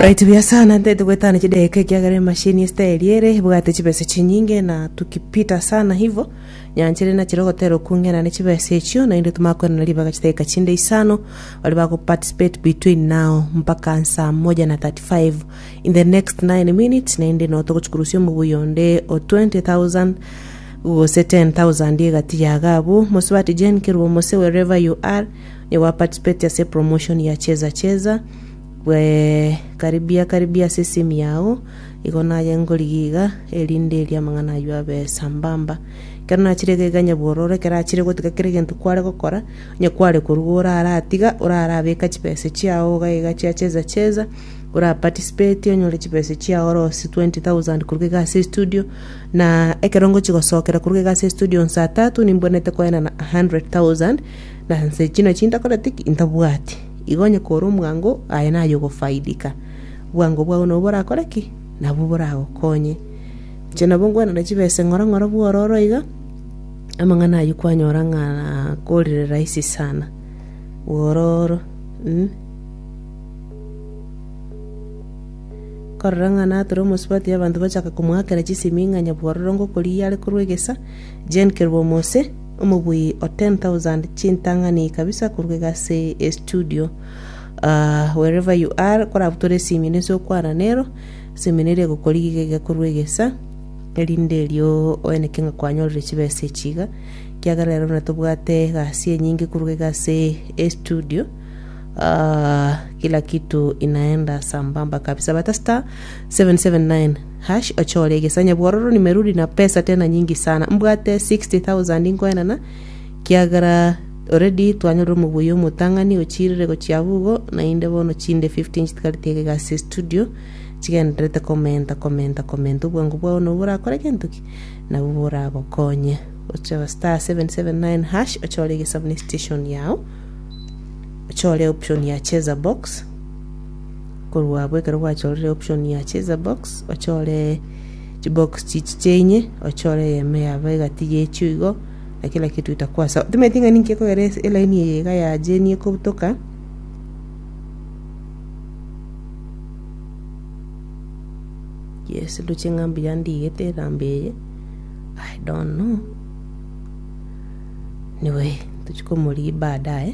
Right buya sana ntete gwetana chideka ekiagera emashini esiteri ere ebwate chibesa chinyinge na tukipita sana hivo nyanchire nachire ogotera okung'ena ne chibesa echio naende tomakwenana ribaga chideka chinde isano bari bago participate between now mpaka saa moja na 35 in the next 9 minutes naende no togochikurusia omobuya onde o 20000 gose 10000 egati yaga abwo mosubati Jane Kerubo Mose wherever you are Onye gwa participate ase promotion ya cheza cheza bwe karibia karibia ase simu yao igo naye ngorigia iga erinde eria amang'ana aywo abe sambamba ekero nachire iga iga nyabworo ore ekero achire gotiga kera egento kware gokora onye kware koruga oraratiga orarabeka chibesa chiao iga iga chia cheza cheza ora participate onyore chibesa chiao ore gose twenty thousand koruga iga ase estudio na ekero ngochi gosokera koruga iga ase estudio saa tatu nimbwenerete koenana hundred thousand. Na inse chino chintakoreti intabwati, igo onye kore omwango, aye naye ogofaidika. Obwango bwao nabwo borakore ki? Nabwo boragokonye. Inche nabo ngwenana chibe ase ng'ora ng'ora bw'ororo iga, amang'ana ayio kwanyora ng'a korire rahisi sana. Bw'ororo, mm. Korora ng'a natore omosubati abanto bachaka komoakera chisemi ng'a nyabwororongo koriya are korwa egesa, Gen Kerwomose, omobuyi o ten thousand chintang'ani kabisa korwa egasi e studio. Ah, wherever you are, korabutore esimino ase okwana nero, esimino eria egokorigia iga korwa egesa, erinde erio oeneke ng'a kwanyorire chibesa echi iga, ekiagera ero natobwate egasi enyinge korwa egasi e studio, ah, kila kitu inaenda sambamba kabisa, bata star, seven, seven, nine. Hash ochore egesanya bwororo ni meruri na pesa tena nyingi sana. Mbwate 60,000 nkoenana kiagera already twanyorire omobuya omotang'ani ochirire gochia abwo igo nainde bono chinde 50 nchitigareti ege egasi ya studio chigendererete komenta komenta komenta obwango bwao nabwo borakore gento ki nabwo boragokonye ochaba star 779 hash ochore egesabu ne station yao ochore option ya cheza box Korwa abwo ekero gwachorire option ya cheza box ochore chibox chichi chiainye ochore eyemo yaba egati yechio igo na kila kitu itakuwa sawa timanyeti ng'a ninki ekogera ase eline eye iga ya jeni ekobutoka yes ndoche ng'a mbuya ndigete erambe eye I don't know anyway tochia komorigia baadaye.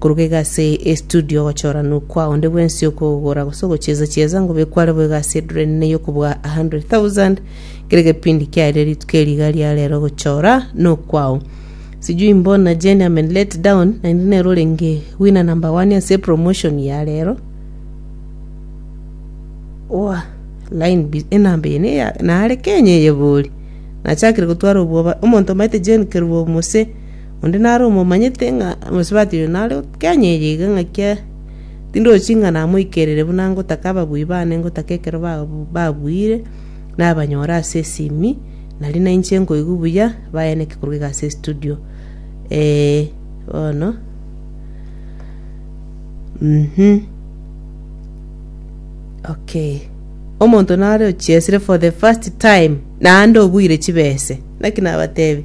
Koruga iga ase estudio ogochoranwa kwa onde bwensi okogora gose ogochieza chieza ngobe kware boigo ase edureni ne yokobua 100,000 kere gepindi kiaire rituko eri iga ria rero ogochora nokwao sijui mbona Jane amen let down naende nero orenge winner number one ase promotion ya rero oa line bi- enamba eye neya nare kenya eyebori nachakire gotwara obwoba omonto omaete Jane kerubo mose Onde nare omomanyete ng'a omosubati oyo nare o Kenya eye iga ng'aki tindochi ng'a namoikerere buna ngotaka ababui bane ngotaka ekero babuire nabanyore ase esimi nari nainche nkoigwa buya bayaneke korwa iga ase estudio ee bono mmh okay. Omonto nare ochiesire for the first time naende obuire chibese naki nabatebi.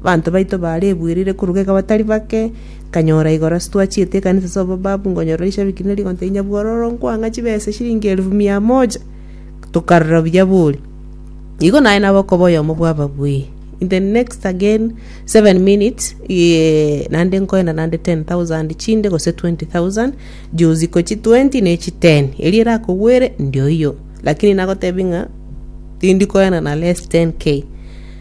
Abanto baito baarebuerire koruga iga batari bake, nkanyora igoro ase twachiete ekanisa ase obobabu, nkonyorora rishabiki ne rigonto rinya bwororo nkwang'a chibesa eshiringi elifu mia moja, tokarora buya bori. Igo naye nabe okoba oyomo bw'ababui. In the next again seven minutes, eeh, naende nkoenda naende ten thousand chinde gose twenty thousand, juzi ko chi twenty ne chi ten, eria erakogwere ndioiyo. Lakini nagotebia ng'a tindi koenda na less ten K.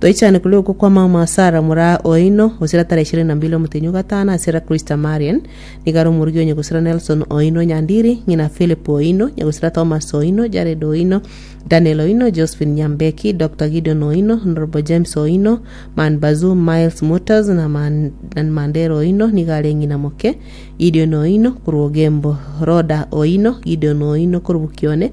Toichane korwa oko kwa mama Sarah mora oino gosira tarehe ishirini na mbili omotenyi o gatano ase era Christa Marian nigo are omorugi onye gosira Nelson oino Nyandiri, ng'ina Philip oino, nyagosira Thomas oino, Jared oino, Daniel oino, Josephine Nyambeki, Doctor Gideon oino, Honorable James oino, Man Bazoom, Miles Motors na Man, na Mandera oino nigo are ng'ina moke, Gideon oino korwa Ogembo, Rhoda oino, Gideon oino korwa Bukione,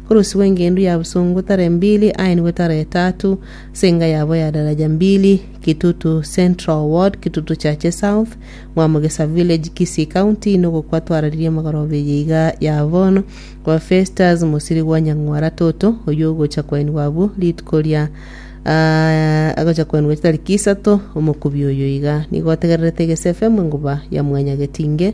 Orosi rw'engendu ya bosongo tara mbili aenigwe tara etaatu, ase enga yabo ya daraja mbili, Kitutu Central Ward, Kitutu Church South, Mwamogesa Village, Kisii County, nogokwa twararirie amagoroba eye iga ya bono, kwa Festus Mosirigwa Nyang'wara Toto, oyio ogocha koenigwa abwo rituko ria ah, agocha koenigwa chitariki isato, omokubi oyo iga nigo otegererete egese FM enguba ya mwanyagetinge,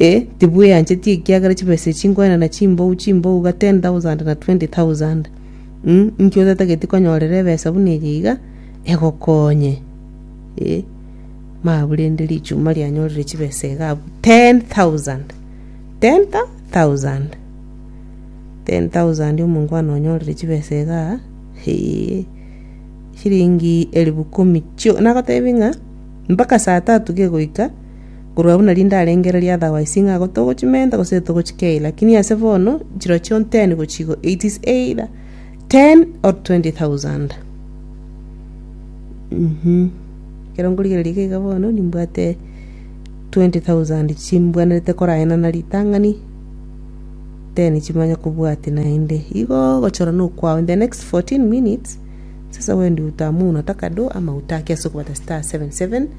ee, tibweancheti ekiagera chibesa echi nkoenana chimbou chimbou iga 10,000 na 20,000. Umm inki otatageti konyorera ebesa buna eye iga egokonye? Ee, mabu rende richuma rianyorire chibesa iga abwo 10,000. 10,000! 10,000 omongwana onyorire chibesa iga aa, hee, chiringi elifu ikomi chio, nagotebia ng'a mpaka saa tatu kegoika. Korwa buna rinde arenge ereri otherwise ng'a igo togochimenta gose togochia kei lakini ase bono chirochio nteni gochia igo it is either ten or twenty thousand mhm ekero nkorigereria iga iga bono nimbwate twenty thousand chimbwenerete koraena na ritang'ani then chimanye kobwatia naende igo gochora na okwao in the next fourteen minutes sasa wendi utamu unataka do ama utaki ase okobata star seven seven.